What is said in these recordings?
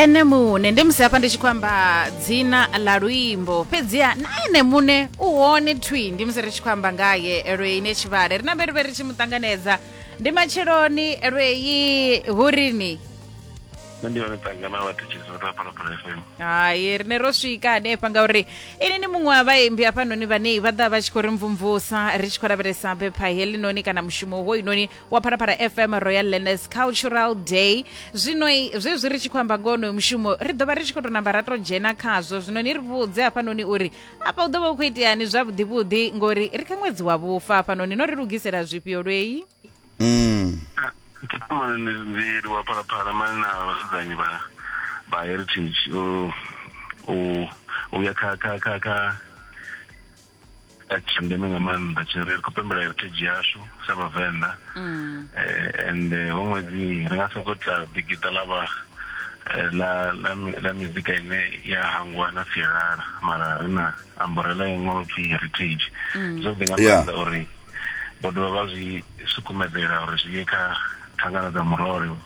ene muṋe ndi musi hafha ndi tshi khou amba dzina ḽa luimbo fhedziha na ene muṋe u hone thwi ndi musi ri tshi khou amba ngaye lweine tshivhale ri na vhe ri vhe ri tshi mu ṱanganedza ndi matsheloni lwei hurini nṋe ndi vha ndi tanga na vhathetshelesi vha tapalapala fm hai rine ro swika hanefha ngauri ini ni muṅwe wa vhaimbi hafhanoni vhane vha ḓa vha tshi khou ri mvumvusa ri tshi khou lavhelesa bepha helinoni kana mushumo hoyunoni wa pharafhara fm royal learners cultural day zwino zwezwi ri tshi khou amba ngoho onoyo mushumo ri ḓo vha ri tshi khou tou namba ra tou dzhena khazwo zwino ni ri vhudze hafhanoni uri afha u ḓo vha u khou iteani zwavhuḓivhuḓi ngori ri kha ṅwedzi wa vhufa hafhanoni no ri lugisela zwifhio lweyi mm. ndi wa phalaphala mane na vhasedzañi vha vha heritage u ya kha kha kha kha tsha ndeme nga maanḓa tshine ri khou pembela heritage yashu sa vhavenḓa mm. eh, and eh, ho ṅwedzi ri nga sokou tla ḓigiṱa ḽa vha eh, la la la mizika ine ya hangwa na sialala mara ri na amborela ya ṅwalo pfhi heritage mm. zwo ḓi nga maanḓa uri vho dovha vha zwi sukumedzela uri zwi ye kha thangana dza murole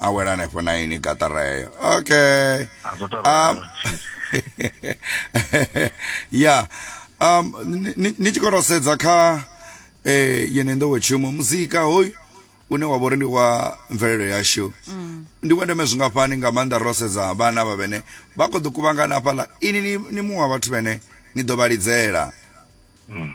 a wela hanefho na ini gaṱara heyo okay a zwo tou um, ralo ya um ni- ni- ni tshi khou tou sedza kha eh yene nḓowetshumo muzika hoyu une wa vha uri ndi wa mvelelo yashu ndi wa ndeme zwingafhani nga maanḓa ro sedza vhana vha vhene vha khou ḓo kuvhangana hafhaḽa ini ni- ni muṅwe wa vhathu vhene ni ḓo vha lidzela Mm.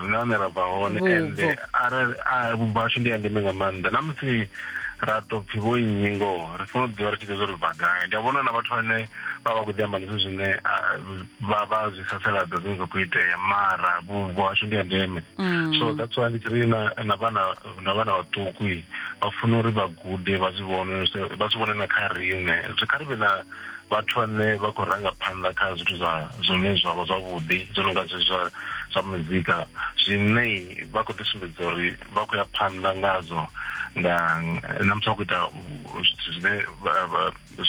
ri na hune ra bva hone ende arali vhubvo hashu ndi ya ndeme nga maanḓa na musi ra to pfhi vho nnyi ngoho ri funa u ḓivha ri tshi ḓo zwo ri bva gai ndi a vhona na vhathu vhane vha vha khou ḓi amba zwithu zwine vha vha zwi sasaladza zwine zwa khou itea mara vhubvo hashu ndi ya ndeme mm. so that's why ndi tshi ri na vhana na vhana vhaṱuku vha funa uri vha gude vha zwi vhone vha zwi vhone na kha riṋe zwi kha ri vhe na vhathu vhane vha khou ranga phanḓa kha zwithu zwa zwine zwa vha zwavhuḓi zwo no nga zwe zwa zwa muzika zwine vha khou ḓisumbedza uri vha khou ya phanḓa ngazwo nga na musi vha khou ita zwithu zwine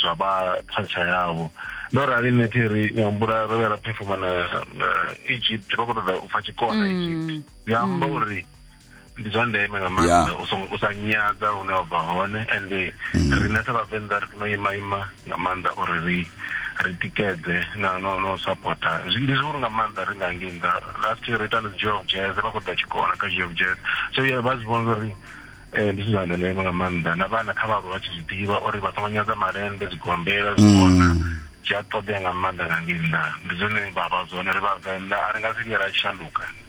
zwa vha culture yavho ndo rali nṋe thi ri nga humbula ro vhuya ra phefoma na egypt vha khou ṱoḓa u pfa tshikona mm. egypt zwi amba mm. uri ndi zwa ndeme nga maanḓa u sa nyadza hune wa bva hone and mm. riṋe sa vhavenḓa ri funa ima ima nga maanḓa uri ri ri tikedze na no no supporta ndi zwihulu nga maanḓa ri nga ngei nnḓa last year ri ita na geo jazz vha khou ḓa tshikona kha geo jazz so ye vha zwi vhona uri eh, ndi zwithu zwa ndeme nga maanḓa na vhana kha vhaaluwa vha tshi zwi ḓivha uri vha songo nyadza malende zwigombela zwikona mm. zwi a ṱoḓea nga maanḓa nga ngei nnḓa ndi zwone vha vha zwone ri vhavenḓa a ri nga si vhuya ra shanduka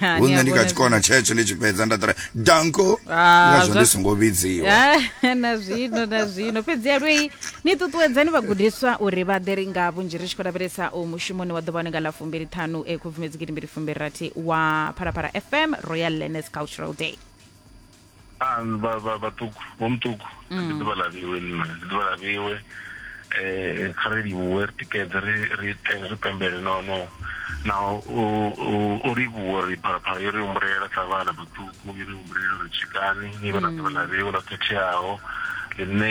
Ha, ni a hune ni kha vhona tshikona tshetsho ni tshi fhedza nda ṱora danko Ah, ngazwo zwa- ndi songo vhidziwa Ah, na zwino na zwino fhedzi ya lwei ni ṱuṱuwedzani vhagudiswa uri vha ḓe ri nga vhunzhi ri tshi khou lavhelesa u mushumoni wa ḓuvha nga ḽa fumbili ṱhanu e khubvumedzi gidimbili fumbili rathi wa phalaphala fm royal learners cultural day a vha vha vhaṱuku vho muṱuku mm. ndi ḓuvha ḽa vhiwe nṋe ndi ḓuvha ḽa vhiwe um kha ri livhuwe ri tikedze ri ri ri pembele no no na u livhuwa ri phalaphala yo ri humbulela sa vhana vhaṱuku yo ri humbulela ri tshikani ni vha na mm. ḓuvha ḽa vhiwe ḽo khetheaho ḽine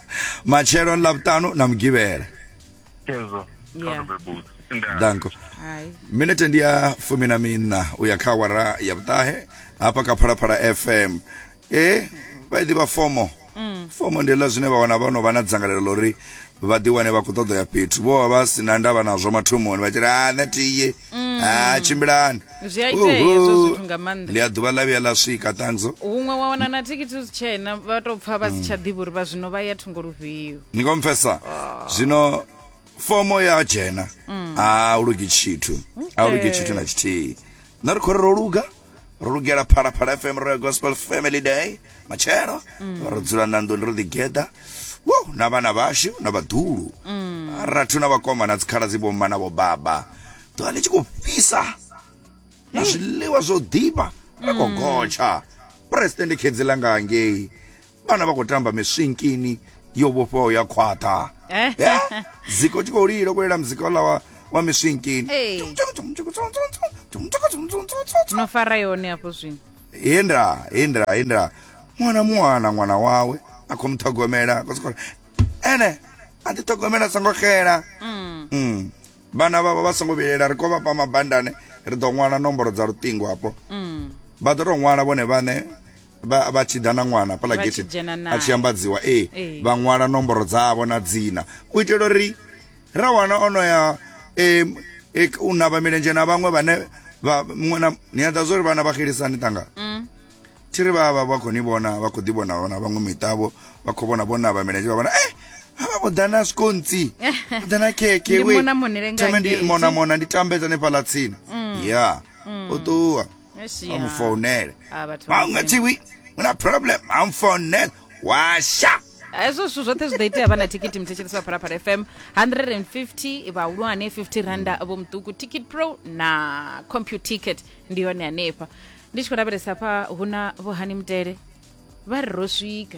matshelo ni ḽavhuṱanu na mugivhela Chezo. Yeah. Kha bebutsi. Nda. danko Hai. minete ndi ya fumi na miṋa u ya kha awara ya vhuṱahe hafha kha phalaphala fm e vha i ḓivha fomo fomo ndi ḽa zwine vha wana vha no vha na dzangalelo ḽa uri vha ḓiwane vha khou ṱoḓa ya fhethu vho vha vha si na ndavha nazwo mathomoni vha tshi ri a nṋe tiye Mm. Ah, tshimbilani zwi a itea hezwo zwithu nga maanḓa ndi a ḓuvha ḽa vhuya ḽa swika thanzo huṅwe wa wana na thikhithi zwi tshena vha tou pfa vha si tsha ḓivha uri vha zwino vha ya thungo lufhio ni khou mpfesa zwino fomo ya dzhena a u lugi tshithu a u lugi tshithu na tshithihi na ri khou ri ro luga ro lugela phalaphala fm royal gospel family day matshelo mm. ro dzula na nḓuni ro ḓigeḓa wo na vhana vhashu na vhaḓulu mm. rathu na vhakoma na dzikhala dzi vhomma na vhobaba ḓuvha ḽi tshi khou fhisa na zwiḽiwa zwo ḓifha ra khou mm. gotsha president khedzi langa ngei vhana vha khou tamba miswinkini yo vhofhaho ya khwaṱha eh? eh? ziko tshi khou lilo kulela muzika ola wa, wa miswinkini no fara yone afho zwino hindra hindra hindra mwana mwana mwana wawe a khou muṱhogomela kosikora ene a ti ṱhogomela songo xela mm. mm. vhana vhavho vha songo vhilela ri khou vhafha mabandane ri ḓo ṅwala nomboro dza luṱingo afho mm. vha ḓo tou ṅwala vhone vhaṋe vha vha tshi ḓa na ṅwana hafhaḽa Vha tshi getheni dzhena nae. a tshi ambadziwa ee Ee. vha ṅwala nomboro dzavho na dzina u itela uri ra wana ono ya em, e, u navha milenzhe na vhaṅwe vhane vha muṅwe na ni a ḓa zwo ri vhana vha xelisani tanga Mm. thi ri vha vha vha khou ni vhona vha khou ḓi vhona vhona vhaṅwe miṱavho vha khou vhona vho navha milenzhe vha vhona e havha vho ḓa na sikontsi vho ḓa na khekhe Ndi we. mona monele nga Thome ndi ngei. mona mona ndi tambedza nefhaḽa tsini ya u ṱuwa amufonele ma nga tshi wi una problem amfonela washa hezwo zwithu zwoṱhe zwi ḓo itea vha na thikiti mthetshelesi wa phalaphala fm 150 vhahulwane 50 randa vho muṱuku ticket pro na compute ticket ndi yone hanefha ndi tshi khou lavhelesa pha hu na vhohani mutele vha ri ro swika